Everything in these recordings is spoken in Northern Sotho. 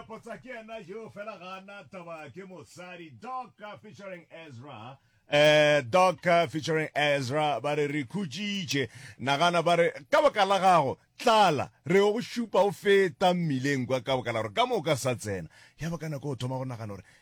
potsa ke yena yoo fela ga a na taba ke mosadi doc featuring ezra eh doc featuring ezra ba re re khutšitše nagana ba re ka baka la gago tlala re go šupa o feta mmileng kwa ka baka la gore ka moka sa tsena ya ba ka nako o thoma go nagana gore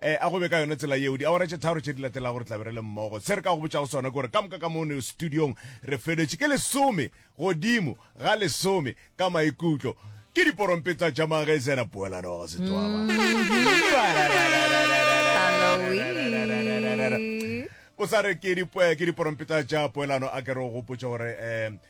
a go be ka yona tsela yeo. Diawara tše tharo tše di latelago re tla be re le mmogo. Se re ka go botšago sona ke gore ka moka ka mono studiong re feletše ke lesome godimo ga lesome ka maikutlo. Ke diporompetsa tša magezera poelano ga setswaba. Halloween. o sa re ke diporompeta tša poelano a ke re o gopotse gore um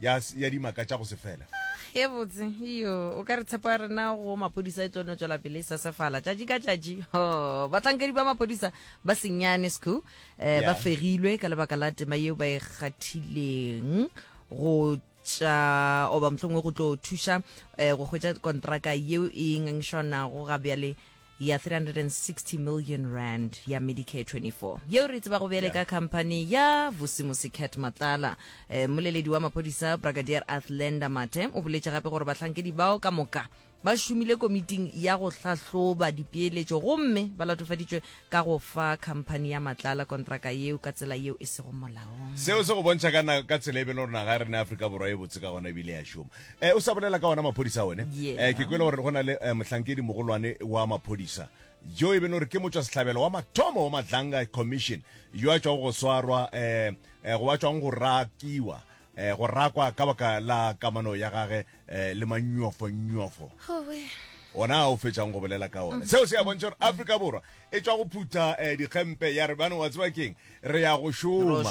ya, ya dimaka tša go se fela ye botse iyo o ka re tshepo ya rena go maphodisa e tlo no tswela pele e sesefala tšatši ka tšatši ho bahlankedi ba maphodisa ba senyane sco um Yeah. ba fegilwe ka lebaka la tema yeo ba e kgathileng go tša oba mohlongwe go tlo thuša um go hwetša kontraka yeo e ngangišwanago ga bjale ya R360 million ya Medicare 24 yeo re tsebago bjale ka khamphani ya Vusimusi Cat Matlala. Eh, mmoleledi wa maphodisa Brigadier Athlenda Mathe o boletše gape gore bahlankedi bao ka moka ba šomile komiting ya go hlahloba dipeeletšo gomme ba latofaditšwe ka go fa khamphani ya Matlala kontraka yeo ka tsela yeo e sego molaong. Seo se go bontšha ka, na, ka tsela e bele gore naga ya rena ya Afrika Borwa e botse ka gona ebile ya šoma. Eh, o sa bolela ka ona maphodisa one yeah. eh, ke kwele gore go na le eh, mohlankedi mogolwane wa maphodisa jo e bene gore ke motswa setlhabelo wa mathomo wa madlanga commission yo a tswang go swarwa eh, eh, go ba tswang go rakiwa eh, go rakwa ka baka la kamano ya gage eh, le manyofonyofo ona o fetsang go bolela ka one seo se ya bontšha gore afrika borwa e tswa go phutha eh, dikgempe ya re bane wa tseba keng re ya go šoma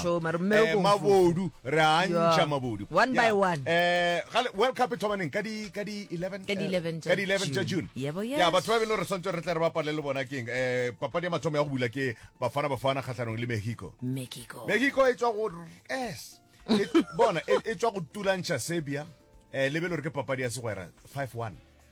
eh, mabodu re a ntšha mabodu one by one eh, world cup e thomaneng ka di 11 ka di 11 eh, tša june ya batho ba bele re swantse re tle re bapale le bona keng um papadi ya mathomo ya go bula ke bafana bafana kgatlhanong le mexico mexico e tswa go s e, bona e, e tswa go tulantšha serbia um lebele gore ke papadi ya segwera 5 1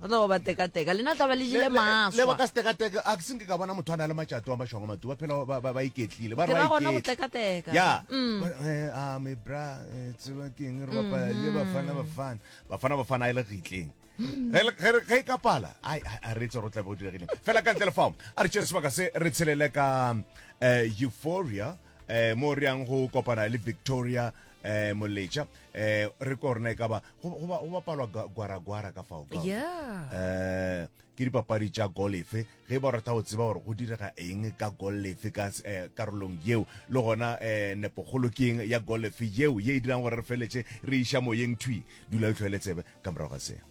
ba tla ba ba tekateka lena tla ba le jile maswa ba ka setekateka a se nke ka bona motho a na le matšato wa mašongo matu ba phela ba ba iketlile ba ra gona go tekateka ya mm. eh, a me bra eh, tseba ke eng re bapa mm-hmm. le bafana bafana bafana bafana ile gitleng ge e ka pala a re tse ro tla bo diregile fela ka ntle le fao a re tšere sebaka se re tshelele ka eh, euphoria eh mo re yang go kopana le victoria eh moletša eh re ko rena e ka ba go go ba- go bapalwa ga- gwaragwara ka fao ka yeah eh ke dipapadi tša golefe ge ba rata go tseba gore go direga eng ka golefe ka s- eh, karolong yeo le gona eh nepogolo ke eng ya golefe yeo ye e dirang gore re feletse re iša moyeng thwi dula o tlhoele tsebe ka morago ga seo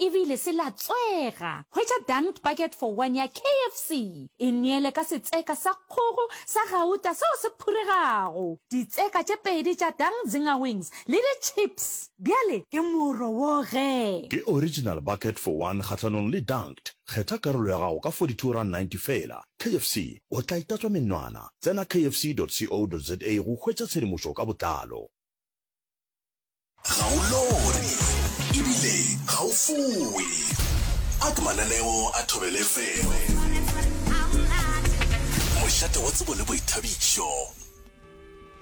Ebile se latswega. Hwetša Dunked Bucket for One ya KFC e neele ka setseka sa kgogo sa gauta seo se phuregago, ditseka tše pedi tša Dunk Zinger Wings le ditšhips. Bjale ke moro wo ge. Ke Original Bucket for One kgahlanong le Dunked. Kgetha karolo ya gago ka R42.90 feela. KFC, o tla itatswa menwana. Tsena kfc.co.za go hwetša tshedimošo ka botlalo. Ga o lore ebile ga o fowe. Ak mananeo a Thobela FM. Mošate wa tsebo le boithabišo.